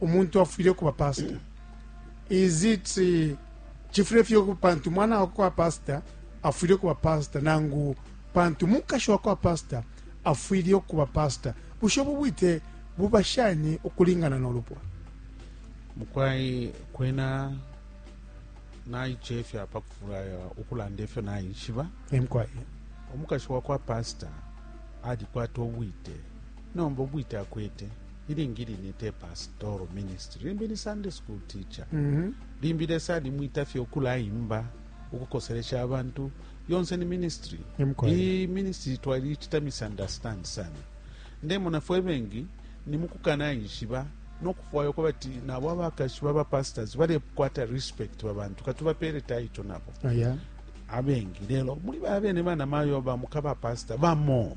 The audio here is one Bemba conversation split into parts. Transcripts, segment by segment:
umuntu afwile kuba pastor is it eh, chifule fye ku- pantu mwana wa kwa pastor afwile kuba pastor nangu pantu mukashi wa kwa pastor afwile kuba pastor busho bubwite buba shani ukulingana n'olupwa mukwai kwena naichefya pa kufulaya ukulanda ifyo naishiba emkwaye omukashi wa kwa pasita alikwata obwite nomba obwite akwete ilingi line te pastoral ministry limbi ni sunday school teacher mm -hmm. limbi lesa alimwita fye ukulaimba ukukoselesha abantu yonse ni ministry iyi ministry twalichita misunderstand sana ndemona fwe bengi ni mukukanaishiba nokufwaya uko bati nabo abakashi baba pastors balekwata respect babantu katubapere taito nabo oh, yeah. abengi lelo muli baa bene bana mayo bamukaba pasta bamo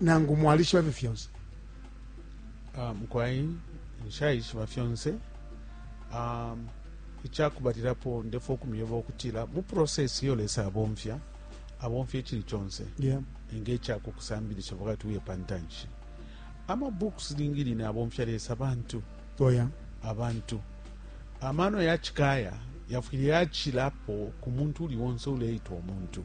nangu mwalishiba fye fyonse ah, mukwai nshayishiba fyonse ah, ichakubalilapo ndefo kumyeba okutila mu process iyo lesa abomfya abomfya ichili chonse yeah. nge chakukusambilisha wakati uye pantanshi ama books lingi line abomfya lesa abantu oh, yeah. abantu amano yachikaya yafwile yachilapo ku muntu uli wonse uleitwa omuntu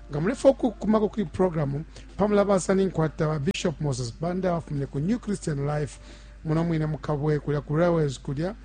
Nga mulefwaya ukukumako kuli programu pa mulabasa, ninkwata ba Bishop Moses Banda abafumine ku New Christian Life muno mwine mu Kabwe kulya ku Railways kulya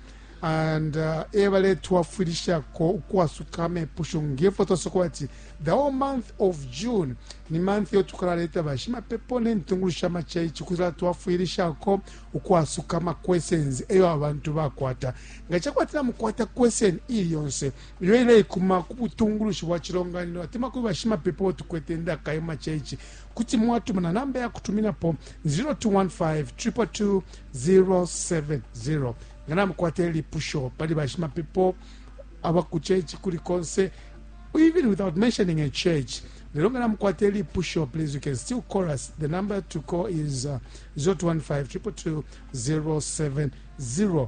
and uh, e baletwafwilishako ukwasuka amepusho ngefo twasokola ati the whole month of june ni month yo tukalaleta bashimapepo n'entungulu sha maceici kuzala twafwilishako ukwasuka ama questions eyo abantu bakwata nga cakwatila mukwata question ili yonse iyo ileikuma ku butungulushi bwa cilonganino atemwa kuli bashimapepo bo tukwete ndaka yo maceici kuti mwatuma na namba ya kutuminapo 0215 222 070 nga namukwata ilipusho pali bashimapepo aba ku church kuli konse even without mentioning a church lelo nga namukwata ilipusho please you can still call us the number to call is uh, 0215 222 070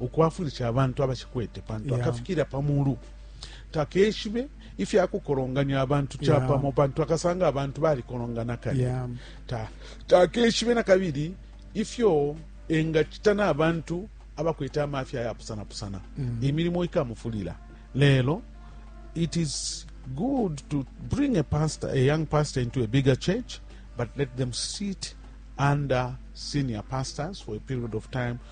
ukwafwilisha abantu abashikwete pantu yeah. akafikira pamulu takeshibe ifya kukolonganya abantu capamo yeah. pantu akasanga abantu balikolongana kale yeah. ta, takeshibe na kabili ifyo engacita n'abantu abakwete amafya yapusanapusana mm. imilimo ikamufulira lelo it is good to bring a pastor a young pastor into a bigger church but let them sit under senior pastors for a period of time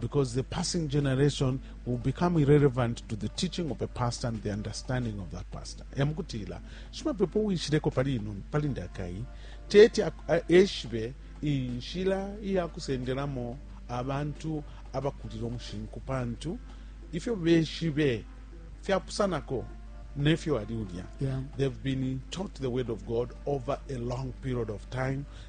because the passing generation will become irrelevant to the teaching of a pastor and the understanding of that pastor emukutila shimapepo wishileko pali ino pali ndakai teti eshibe inshila iyakusendelamo abantu abakulile umushinku pantu ifyo beshibe fyapusanako nefyo ali ulya yeah. they've been taught the word of god over a long period of time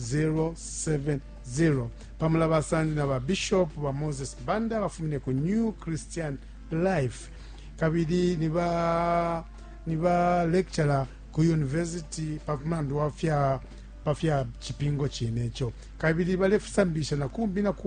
070 pa mulabasa ndi na ba Bishop ba Moses Banda bafumine ku New Christian Life kabili ni ba ni ba lecturer ku university pa mulandu wa fya pa fya cipingo cine ico kabili balefusambisha na kumbi na kumbi